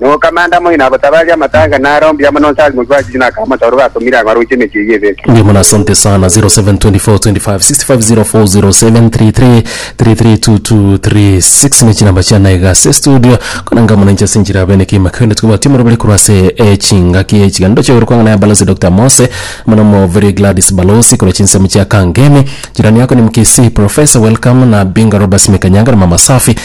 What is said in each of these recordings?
Nokamanda moino abotabarie amatanga nare ombuya mono onse arimokigwe ase riina akamotoora obatomire agwo aroche emechie eyio ebere. Mbuya mono asante sana 072425650403332236 ne chinamba chiana iga ase estudio kona ngamo nainche ase enchera bene kegima kende tobwati omorobere korwa ase echingaki echiganto chiaigoro kwang'ana ya balosi Doctor Mose mono mo very Gladys balosi korwa chinsemo chia Kangemi jirani yako ni mkisii professor welcome na Binga Robert Mekanyanga na mama Safi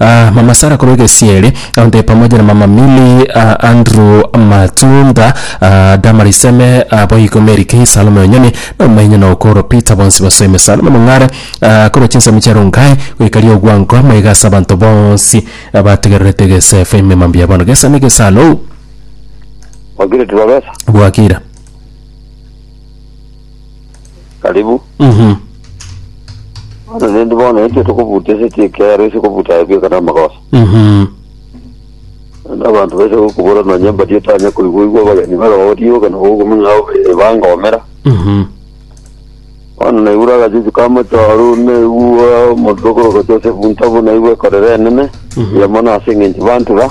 Aah mama Sarah korwa egesieri onde pamoja na mama Milly aah Andrew Matunda aah Damaris Eme aah boigo Mary Kay Salome Onyoni na omonyene oo Okoro Peter bonsi basoime Salome Mong'are aah korwa chinsemo chia Rongai goika Riogwango maiga ase abanto bonsi abatigererete egeseefa emema mbuya bono gesa negesaalou Wakire tibabesa. bwakira. karibu Mhm. bono nendi bono ekio tokobuta ase chikero ase kobuta aye bweka na amagoso Mhm. na abanto baise gokobora nonya mbadi otanya koigwa igwa abageni barogo rioka na gokomenya ao ebangomera Mhm. bono naigure agachuchu ka mochoru naigua omonto okoroka Joseph Ntabu naigua ekorera enene Mhm. yamo nase eng'encho bantura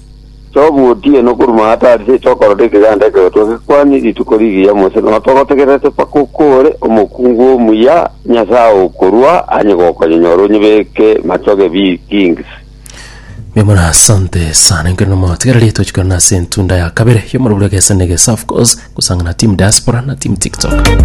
Togotiena okoruma aa tari seito okorora ekeganda ekegotua gekwani rituko rigiya Mose nonya togotegererete mpaka okore omokungu omuya Nyasae okorua anye gokonyonyora onyebeke machoge bi kings. Mbuya mono asante sana enkero na moyo tigara rieto chikana na ase entunda ya kabere yomorobio gesa ne gesa of course gusangana team diaspora na team tiktok